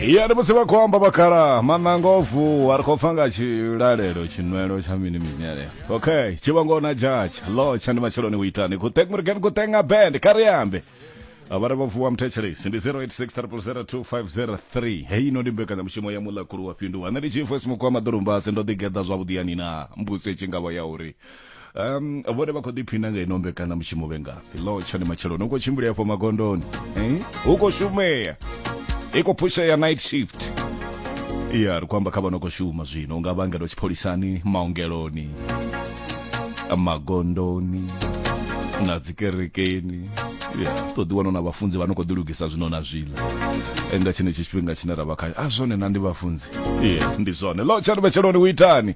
ya ndi musi vha khou amba vhakhala maṋanga o vuwa ri khou pfa nga tshilalelo tshinwelo tsha mini mini aleyo okay tshivhango na jatsha lotsha ndi matsheloni u itani kutek murgen kutenga band kha ri ambe avhare vha vuwa muthetshelesi ndi 0863002503 hei ino ndi mbekanyamushumo ya muḽakulu wa fhinduwa nṋe ndi chiefo simuku wa maḓolumbasi ndo ḓigeḓa zwavhuḓi yani na mbuso i tshi ngavha ya uri um vhone vha khou ḓiphina nga ino mbekana mushumo vhe ngafhi lo tshone matsheloni u khou tshimbila afho magondoni eh? u khou shumea i khou phushea night shift ya ri khou amba kha vha no khou shuma zwino u nga vhangela tshipholisani maongeloni magondoni na dzikerekeni ya to ḓi wana na vhafunzi vha no khou ḓilugisa zwino na zwiḽa nga tshenetshi tshifhinga tshine ra vha khayo a zwone na ndi vhafunzi ya ndi zwone lo tshani vhetsheloni u itani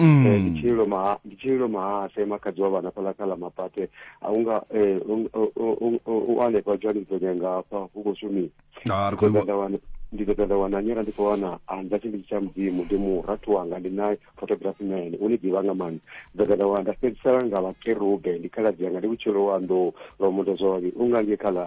Mm. Eh, ndi tshililo maha ndi tshililo mahase makhadzi wa vhana fhaḽa kha ḽa mapate a unga eh, u- u- u- u- u hanefha johannesburg nga hafha hu khou shumisa Ah, ri khou i vho- wana ndi ḓo ṱoḓa wana nyera ndi khou wana anza tshinditshi tsha mudzimu ndi murathu wanga ndi naye photography man u ni ḓivha nga maanḓa ndo ṱoḓa wana nda fhedzisela nga vhakerube ndi khaladzi yanga ndi vhutshilo wa nḓou lwa mundo zwavhavhi u ngange kha ḽa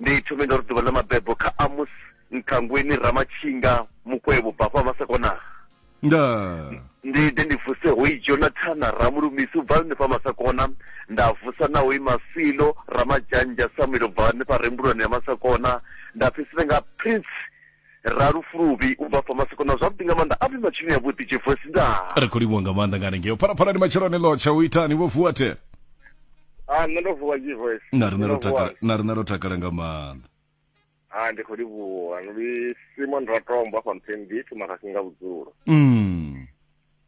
Ndi thome nga uri ḓuvha ḽa mabebo kha Amos Nkhangweni Ramatshinga Mukwevho bva hafha Masakonaa. Ndaa. Ndi ḓe ndi vuse hoyi Jonathana Ramulumisi u bva hanefha Masakona, nda vusa na hoyi Masilo Ramadzhanzha Samuel u bva hanefha Rembulwani ya Masakona, nda fhedzisela nga Prince Ra lufuluvhi u bva fa maseko na zwavhuḓi nga maanḓa a vhe matshinoni a vhuḓi Jeff West ndaa. Ri khou livhuwa nga maanḓa nga hanengeo phalaphalani matsheloni ḽo tsha u itani vho vuwa the. Ah nṋe ndo vuwa Jeff West. Na riṋe ro takala na riṋe ro takala nga maanḓa. Ah ndi khou livhuwa ndi Simon Ratombo afha Mpembi Tumahasi nga vhudzulo. Mm.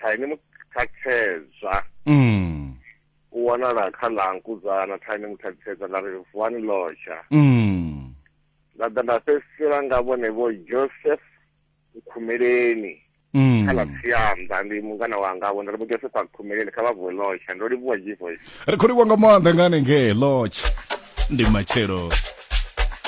kha ene muthakhedzwa mm. u wanala kha ḽa nkuzana kha ene muthakhedzwa ḽa ri vuwani lotsha mm. nda ḓa nda fhedzisela nga vhone vho joseph nkhumeleni mm. kha ḽa tsianda ndi mungana wanga vho nda ri vho joseph a nkhumeleni kha vha vuwe lotsha ndo livhuwa g voice ri khou livhuwa nga maanḓa nga hanengee lotsha ndi matshelo